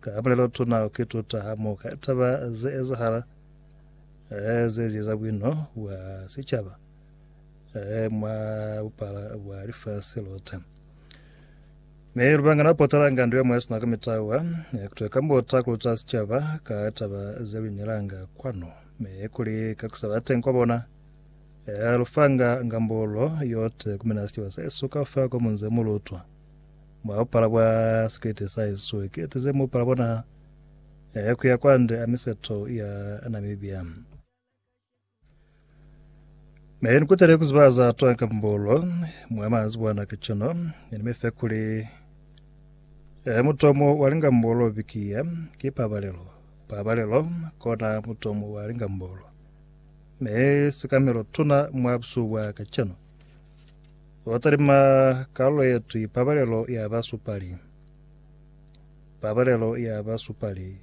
Ka pulelotuna ki tuta hamoka taba ze ezahala ze zieza buino bwa sicaba mwa bupala bwa lifasi lote. Mi lubangana lu potalanga ndu yemwe sina kumitawa kutwe kambota kuluta sicaba ka taba ze luinelanga kwanu, mi kuli ka kusaba teng kwa bona lufanga ngambulo yote kumina sicaba sesu kaufela ko munze mulutwa. Mwa bupala bwa sikete sa Yesu, ki ete ze mupala bona ya kuya kwande a miseto ya Namibia. Me ni kutele kuziba za twa kambulo mwa manzibwana ka chino, ni ni mefe kuli e mutomo wa lingambulo bikiya ki pabalelo. Pabalelo kona mutomo wa lingambulo. Me sikamelo tuna mwa busuwa ka chino. Ba talima kalulo ye twi Pabalelo ya Basupali. Pabalelo ya Basupali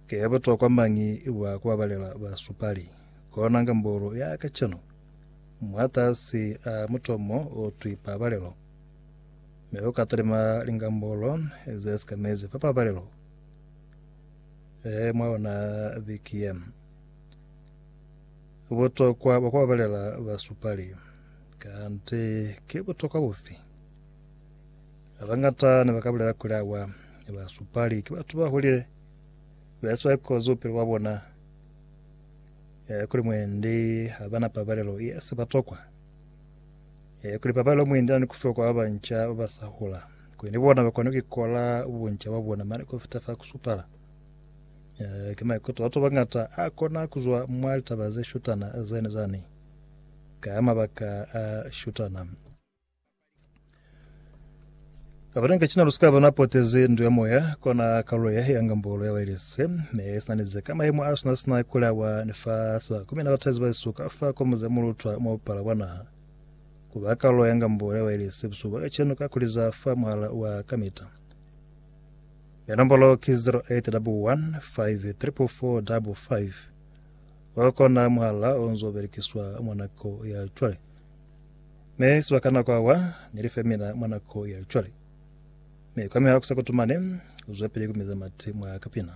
ke ya butokwa mañi bwa ku babalela basupali? Kona ngambulu ya kacenu, mwatasi a mutomo o twi Pabalelo. Mi uka talima lingambulo ze si ka mezi fa Pabalelo e mwa ona biki ye. Butokwa bwa ku babalela basupali. Kanti ki butokwa bufi? Ba bañata ne ba ka bulela kuli awa, basupali ki batu ba hulile ba si ba ikozi bupilo bwa bona, e, kuli mwendi ha ba na pabalelo ye si ba tokwa, e, kuli pabalelo mwendi na ni ku fiwa kwa ba banca ba ba sa hula, kuli ni bona ba kone ku ikola bunca bwa bona mane ku fita fa ku supala. Eh, ki maikuto a bañata a kona ku zwa mwa litaba ze shutana zani zani ka mabaka a shutana. Abanenge cina lusika bona poteze ndu ya moya kona kalulo ya ya ngambolo ya wailese me sinanize ka maimo a sina sina kulawa ni fa sa kumina batazi ba suka fa kwa muze mulutwa mo pala wa naha kuba kalulo ya ngambolo ya wailese busuba ka ceno ka kuliza fa muhala wa kamita Mi nombolo ki 08 double 1 5 triple 4 double 5. Wa kona muhala o nzo belekiswa mwa nako ya cwale. Mi sibaka nako awa ni li femina mwa nako ya cwale. Mi kwa mihako sa kutumane, u zwepili ku miza mati mwa kapina.